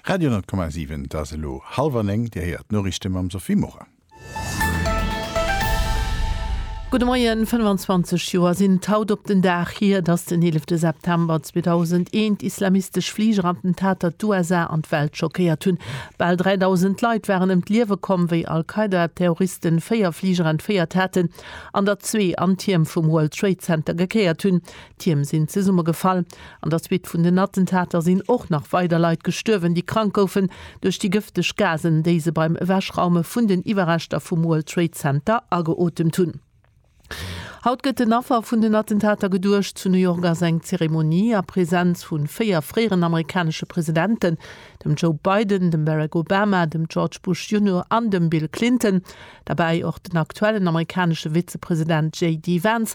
Radio 10,7 Et ass elo hallwer néng, Dir héiert d'Noriichte mam Sophie Morang. Gudde Moien, 25 Joer sinn et haut op den Dag hier, datt den 11 September 2001 islamistesch Fligerattentater d'USA an d'Welt schockéiert hunn. Bal 3.000 Leit waren ëm d'Liewe komm, wéi Al-Qaida-Terroristen véier Fliger entféiert haten, an der zwee an Tierm vum World Trade Center gekéiert hunn. D'Tierm sinn zesummegefall. An der Suite vun den Attentater sinn och nach weider Leit gestuerwen, déi krank goufen duerch déi gëfteg Gasen, déi se beim Ewechraume vun den Iwwerreschter vum World Trade Center ageotemt hunn. Haut gëtt den Affer vun den Attentater geduecht. Zu New York ass eng Zeremonie a Presenz vu véier fréieren amerikanesche Presidenten, dem Joe Biden, dem Barack Obama, dem George Bush Junior an dem Bill Clinton. Derbäi och den aktuellen amerikanesche Vizepresident JD Vance,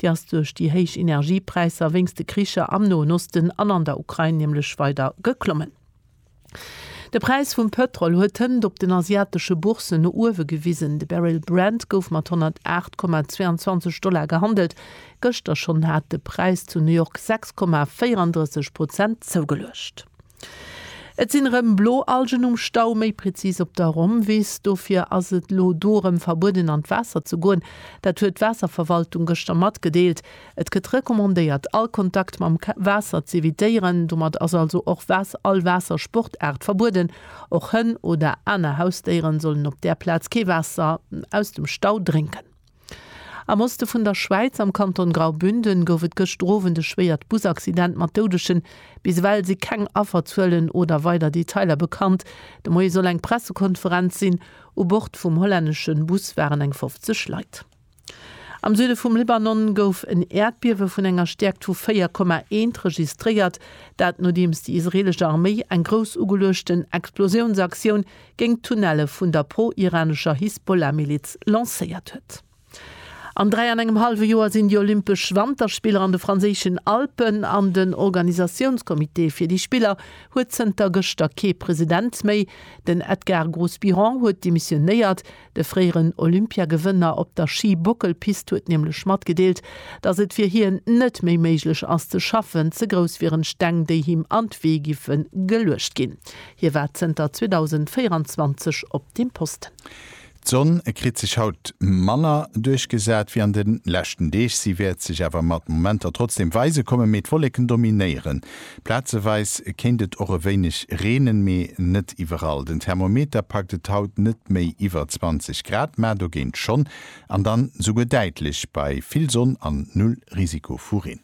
Déi ass duerch déi héich Energiepräisser wéinst de Kricher am Noen Osten an an der Ukrain nämlech weider geklommen. De Präis vum Pëtrol huet d'Hënt op den asiatesche Bourssen no uewe gewisen. De Barrel Brent gouf mat 108,22 Dollar gehandelt. Gëschter schonn hat de Präis zu New York 6,34 Prozent zougeluecht. Et sinn erëm blo Algen um Stau, méi prezis op der Romwees. Dofir ass et elo do erëm verbueden an d'Waasser ze goen. Dat huet d'Waasserverwaltung gëschter matgedeelt. Et gëtt recommandéiert all Kontakt mam Waasser z'evitéieren. Domat ass also och all Waassersportaart verbueden. Och Hënn oder aner Hausdéieren sollen op där Plaz kee Waasser aus dem Stau drénken. Am Oste vun der Schwäiz, am Kanton Graubünden, gouf et gëschter Owend e schwéiert Busaccident mat Doudeschen. Bis ewell si keng Afferzuelen oder weider Detailer bekannt. De Moie soll eng Pressekonferenz sinn. U Bord vum hollännesche Bus waren eng 50 Leit. Am Süde vum Libanon gouf en Äerdbiewe vun enger Stäerkt vu 4,1 registréiert, dat nodeems déi israeelesch Arméi eng grouss ugeluechten Explosiounsaktioun géint d'Tunnelle vun der pro-iranescher Hisbollah-Miliz lancéiert huet. An dräi an engem hallwe Joer sinn déi Olympesch Wanterspiller an de franséischen Alpen an den Organisatiounscomité fir déi Spiller huet zënter gëschter kee President méi. Den Edgar Grosbiron huet demissionéiert, De fréieren Olympiagewënner op der Schi-Bockelpist huet nämlech matgedeelt, datt et fir hien net méi méiglech ass ze schaffen, ze grouss wieren Steng, déi him an d'Wee giffe geluecht ginn. Hie war zënter 2024 op deem Posten. D'Sonn kritt sech haut manner duerchgesat wéi an de leschten Deeg. Si wäert sech awer mat Momenter trotzdeem weise kommen, mee d'Wolleken dominéieren Plazeweis kéint et och e wéineg reenen, mee net iwwerall. Den Thermometer packt et haut net méi iwwer 20 Grad, mä dogéint schonn, an dann esouguer däitlech bei vill Sonn an null Risiko vu Reen.